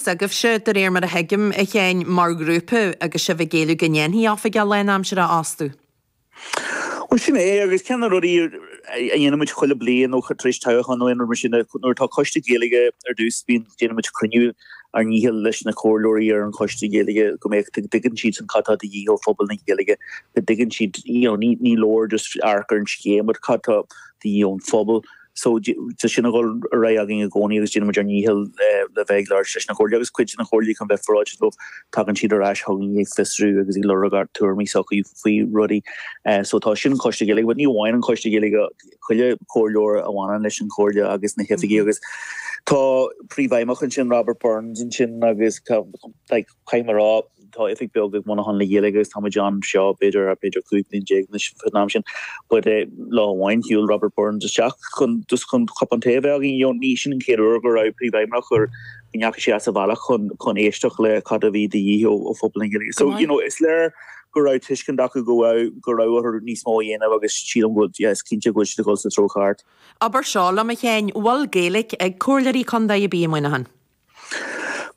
s'agaibhse, de réir mar a thuigim, a Sheáin, mar ghrúpa agus sibh ag géilleadh go ndéanfaí Oifigeach lánaimseartha astu? Bhuel, sin é, agus ceann de na rudaí a dhéanann muid chuile bliain nó tar éis toghcháin nó aon rud mar sin ná nuair atá Coiste Gaeilge ar dtús bíonn, déanann muid cruinniú ár ndícheall leis na comhairleoirí ar an Choiste Gaeilge go mbeadh, go dtuigeann siadsan cad tá de dhíth ó phobal na Gaeilge, go dtuigeann siad, you know, ní, ní leor just amharc ar an scéim but cad tá de dhíth ón phobal. So tá sin a dhul ar aghaidh againn i gcónaí agus déanaimid ár ndícheall le bheith ag labhairt leis na comhairleoirí agus cuid de na comhairleoirí chun bheith féaráilte dóibh. Tagann siad ar ais chugainn ag fiosrú agus ag lorg ár dtuairimí s'againne faoi rudaí. So tá sin an Coiste Gaeilge but ní amháin an Coiste Gaeilge, chuile Comhairleoir a bhaineann leis an Chomhairle agus na hOifigigh agus tá príomhfheidhmeannach ansin, Robert Burns ansin agus like, Caithfidh mé a rá, tá oifig beag ag Muineachán le Gaeilge agus tá muid anseo b'fhéidir ar b'fhéidir 15 bliain anois faoin am sin. But eh, lá amháin shiúil Robert Burns isteach chun just chun cupán tae a bheith againn, you know, is é sin an chéad uair go raibh príomhfheidhmeannach gur go ndeachaigh sé as a bhealach chun chun éisteacht le cad a bhí de dhíth ó ó phobal na nGaeilge. So, you know, is léir go raibh tuiscint acu go raibh go raibh orthu níos mó a dhéanamh agus sílim go bhfuil, yeah, is cinnte go bhfuil siad ag dhul sa treo ceart. Abair seo liom, a Sheáin, bhfuil Gaeilg ag Comhairleoirí Contae ar bith i Muineachán?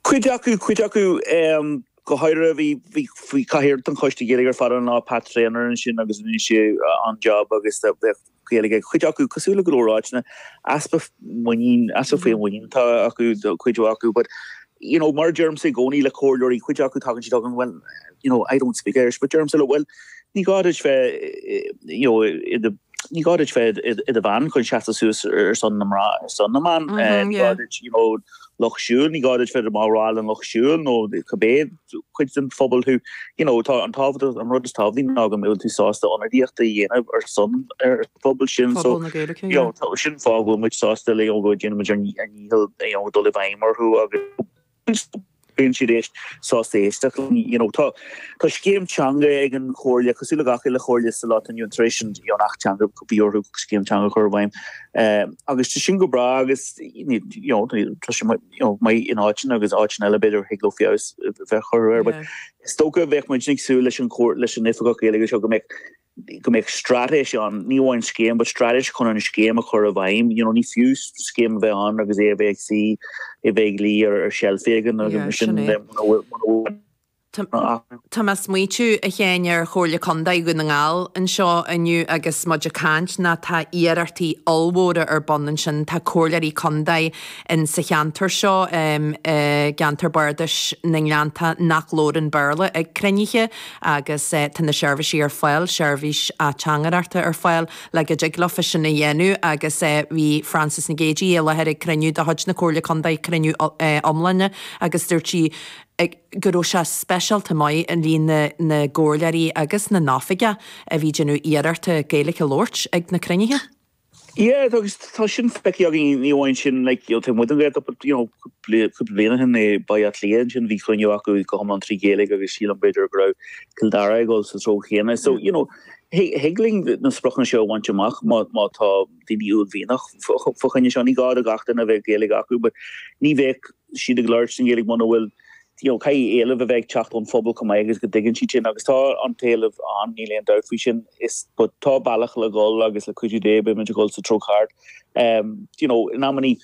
Cuid acu, cuid acu go háirithe, bhí, bhí, bhí cathaoirleach den choiste Gaeilge ar fad ann, Pat Treanor ansin agus rinne sé an-job agus bheadh Gaeilge aige. Cuid acu, cosúil le go leor áiteanna, easpa muinín, easpa féinmhuinín atá acu, cuid mhaith acu, but, you know, mar a deirimse i gcónaí le comhairleoirí, cuid acu tagann siad chugam, well, you know, I don't speak Irish, but deirimse leo, well, ní gá duit bheith, you know, i do, Ní gá duit bheith i do bhean chun seasamh suas ar son na mná, ar son na mban. Ní gá duit, you know, lucht siúil, ní gá duit bheith i do bhall den lucht siúil nó cibé cuid den phobal thú. You know, tá an tábhacht, an rud is tábhachtaí ná go mbeadh tú sásta ionadaíocht a dhéanamh ar son ar an phobal sin. So, you know, sin an fáth go bhfuil muid sásta le, you know, go ndéanann muid ár ndícheall, you know, dul i bhfeidhm orthu agus, Bíonn siad éist sásta éisteacht linn. You know, tá tá scéim teanga ag an chomhairle, cosúil le gach uile chomhairle sa lá atá inniu ann tar éis an Acht Teanga go mbíonn orthu scéim teanga a chur i bhfeidhm. Eh, agus tá sin go breá agus ní, you know, tá tá sé mar, you know, maith in áiteanna agus áiteanna eile b'fhéidir a thig leo feabhas a bheith a chur air, but Yeah. is dócha go mbeadh muid ag súil leis an chomh- leis an Oifigeach Gaeilge seo go mbeadh go mbeadh straitéis ann, ní amháin scéim, but straitéis chun an scéim a chur i bhfeidhm, you know, ní fiú scéim a bheith ann agus é a bheith ag suí, a bheith ag luí ar sheilf éigin agus mar sin de, muna bhfuil aon. Tá mé ag smaoiteamh, a Sheáin, ar Chomhairle Contae Dhún na nGall anseo inniu agus muid ag caint ná tá iarrachtaí ollmhóra ar bun ansin, tá comhairleoirí contae in sa cheantar seo i gceantar Bardasach na nGleanntán nach labhrann Béarla ag cruinnithe, agus tá na seirbhísí ar fáil, seirbhís ateangaireachta ar fáil le go dtig leo fosta sin a dhéanamh agus bhí Frances Nic Géidigh i láthair ag cruinniú de chuid na Comhairle Contae, cruinniú iomláine agus dúirt sí go raibh sé speisialta maith an líon na gcomhairleoirí agus na n-oifigeach a bhí ag déanamh iarrachta Gaeilge a labhairt ag na cruinnithe. Yeah tá agus tá sin feicthe againn ní amháin sin like you know taobh amuigh den Ghaeltacht but you know cúpla cúpla bliain ó shin i mBaile Átha Cliath ansin bhí cruinniú acu go hiomlán trí Ghaeilge agus sílim b'fhéidir go raibh Cill Dara ag dul sa treo chéanna so you know thig thig linn na spriocanna seo a bhaint amach má má tá daoine uaillmhianach fá fá choinne seo ní gá do gach duine a bheith Gaeilge acu but ní bheadh siad ag labhairt an Ghaeilge muna bhfuil you know, caithfidh éileamh a bheith ag teacht ón phobal chomh maith agus go dtuigeann siad sin agus tá an t-éileamh ann, níl aon dabht faoi sin but tá bealach le dhul agus le cuidiú Dé beimid ag dhul sa treo cheart. Ehm, do you know, in amannaí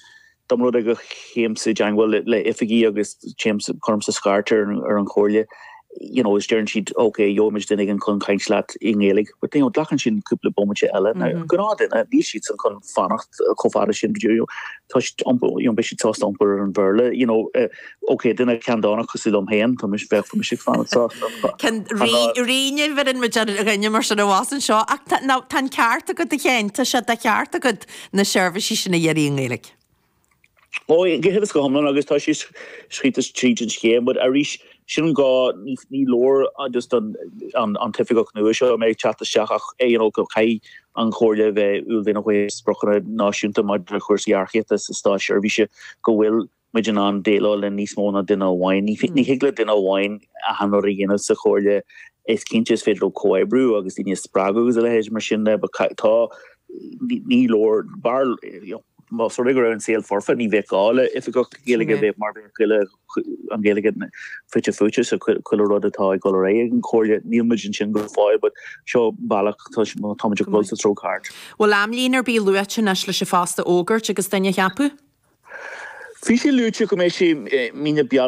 dá mba rud é go dtéimse i dteangmháil le, le oifigí agus téim, cuirimse scairt ar an, ar an chomhairle, you know, is deireann siad ok, gheobhaimid duine éigin chun caint leat i nGaeilge but, you know, glacann siad cúpla bomaite eile. Now, an gnáthdhuine, níl siadsan chun fanacht chomh fada sin, you know, toisc iompar, you know, beidh siad sásta iompar ar an Bhéarla, you know, eh, Ok, duine ceanndánach cosúil liom féin, tá mise, bheadh mise ag fanacht sásta. Sin an rud ní mhaireann muid ar dhuine mar sin a bhás anseo? Ach tá, ná, tá an ceart agat a Sheáin, tá sé de cheart agat na seirbhísí sin a iarraidh i nGaeilge. Ó, cinnte agus go hiomlán agus tá sé scríofa tríd an scéim, but arís, sin an gá, ní, ní leor just don, an, an t-oifigeach nua seo a mbeidh ag teacht isteach ach ar ndóigh caithfidh an Chomhairle a bheith uaillmhianach faoi spriocanna náisiúnta maidir le cúrsaí earcaíochta sa státseirbhís go bhfuil muid in ann déileáil le níos mó ná duine amháin. Ní thig le duine amháin ina aonar é a dhéanamh sa chomhairle. Is cinnte is féidir leo comhoibriú agus daoine a spreagadh agus a leithéid mar sin de. But ca, tá, ní leor, b'fhearr, you know, más rud é go raibh an saol foirfe ní bheadh gá le oifigeach Gaeilge a bheith mar bheadh chuile an Ghaeilge fite fuaite sa chuile rud atá ag dul ar aghaidh ag an chomhairle. Níl muid ansin go fóill but seo bealach, tá muid ag dul sa treo ceart. Bhfuil amlíne ar bith luaite anois leis an phost a fhógairt agus duine a cheapadh? Bhí sé luaite go mbeidh sé mí na Bealtaine.